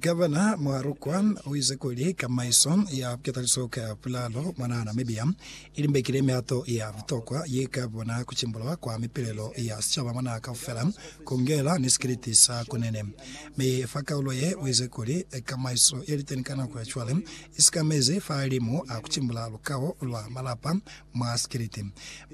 Gavana Muharukwa uize kuli kamaiso ya bukataliso ka bulalo mwanaa Namibia ilimbekile mihato ya butokwa yeka bona kucimbulwa kwa mipilelo ya sicaba mwanaa kaufela, kungela ni sikiliti sa kunene. Mi fa kaulo ye, uize kuli kamaiso yeliteni ka nako ya cwale isikamezi fahalimu a kucimbula lukao lwa malapa, Mwa Sikiliti.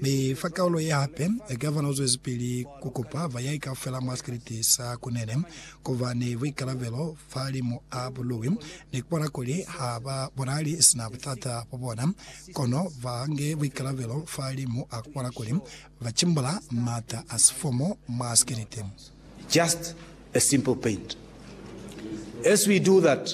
Mi fa kaulo ye hape, Gavana u zwezipili ku kupa ba yai kaufela mwa sikiliti sa Kunene ku ba ni buikalabelo fahalimu a bului ni ku bona kuli ha ba bonahali sina butata bwa bona, kono ba nge buikalabelo fahalimu a ku bona kuli ba cimbula m'ata a sifomo mwa sikiliti. Just a simple paint. As we do that.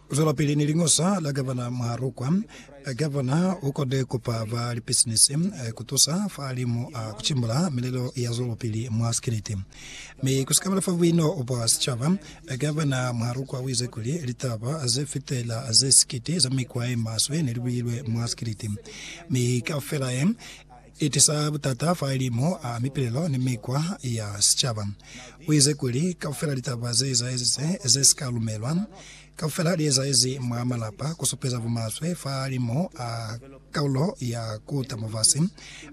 Zwelapili ni Liñosa la Gavana Mwahalukwa. Gavana u kode kupa ba lipisinisi ku tusa fahalimu a ku cimbula milelo ya zwelopili mwa sikiliti, mi ku si kabela fa buino bwa sicaba. Gavana Mwahalukwa u ize kuli litaba ze fitela ze sikiti za mikwa ye maswe ne li builwe mwa sikiliti, mi kaufela ye I tisa butata fa lilimo a mipilelo ni mikwa ya sicaba. U ize kuli, Kaufela litaba ze ezaezize ze si ka lumelwa, kaufela li ezaezi mwa malapa, ku supeza bumaswe fa lilimo a kaulo ya ku ta mufasi.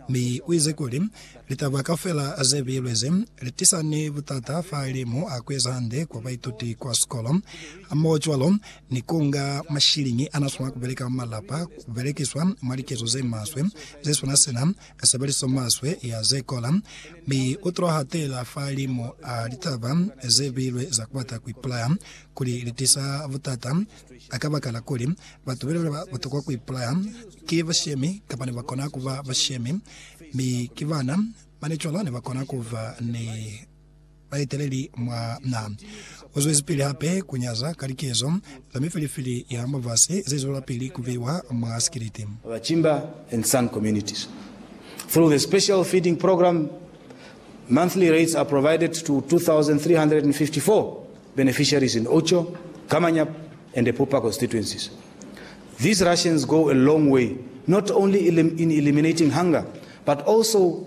Mi u ize kuli, Litaba kaufela ze bilwe ze, li tisa ni butata fa lilimo a ku eza hande kwa baituti kwa sikolo, hamohocwalo ni ku nga mashiliñi a n'a swanela ku beleka mwa malapa ku belekiswa mwa likezo ze maswe ze swana sina, sebeliso maswe ya ze kola, mi u t'o hatela fahalimu a litaba ze bilwe za ku bata ku ipulaya, kuli li tisa butata a kabakala kuli batu be ba tokwa ku ipulaya ki bashemi kapa ne ba kona ku ba bashemi, mi ki bana ba ne cwalo ne ba kona ku ba ni baeteleli mwa na. U zwezipili hape ku nyaza ka likezo za mifilifili ya mubasi ze zwelapili ku beiwa mwa sikiliti. Bachimba and San communities. Through the Special Feeding Programme, monthly rates are provided to 2,354 beneficiaries in Ocho, Kamanyap and Epupa constituencies. These rations go a long way not only in eliminating hunger but also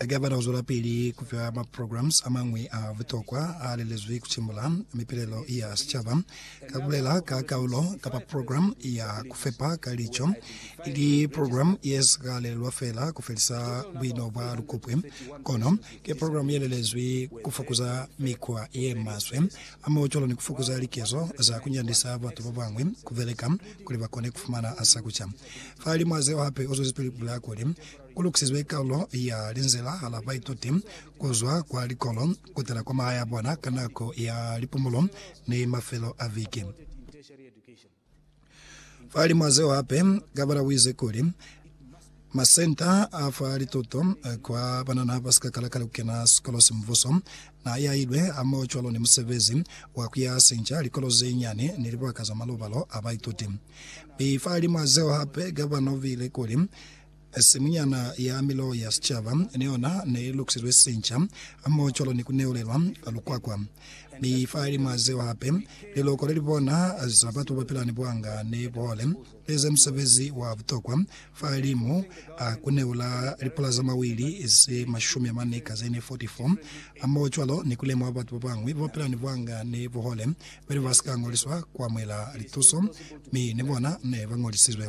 Hake abata kuzwelapili kufa ma programs amañwi a butokwa aalelezwi kutimula mipilelo ya sicaba, ka kubulela ka kaulo kapa program ya kufepa ka lico, ili program yesika lelelwa feela kufelisa buino bwa lukupwe, kono ki program yelelezwi kufukuza mikwa yemaswe a maocolo ni kufukuza likezo za kunyandisa batu babañwi kubeleka kuli bakone kufumana sa kuca. Fahalimu hazeo hape uzwezipili kubulela kuli, Ku lukisizwe kalulo ya linzila la baituti ku zwa kwa likolo kutala kwa mahae a bona ka nako ya lipumulo ni mafelo a viki. Fahalimw'a zeo hape, Gabala u ize kuli, Masenta a fa lituto kwa banana ba si ka kala ka ku kena sikolo se mubuso n'a yahilwe hamohocwalo ni musebezi wa ku yaha sinca likolo ze nyane ni libaka za malobalo a baituti. Mi fahalimw'a zeo hape, Gabala u bile kuli, Simunyana ya Milowo ya Sicaba ni yona ne i lukisilwe sinca, hamoho cwalo ni ku neulelwa lukwakwa. Mi fahalimw'a zeo hape, liloko le li bona za batu ba pila ni buhanga ne bu hole, li eza musebezi wa butokwa fahalimu a ku neula lipula za mawili ze mashumi amane ka ze ne 44, hamoho cwalo ni ku lemuha batu ba bañwi ba ba pila ni buhanga ne bu hole ba ne ba si ka ñoliswa ku amuhela lituso mi ni bona ne ba ñolisizwe.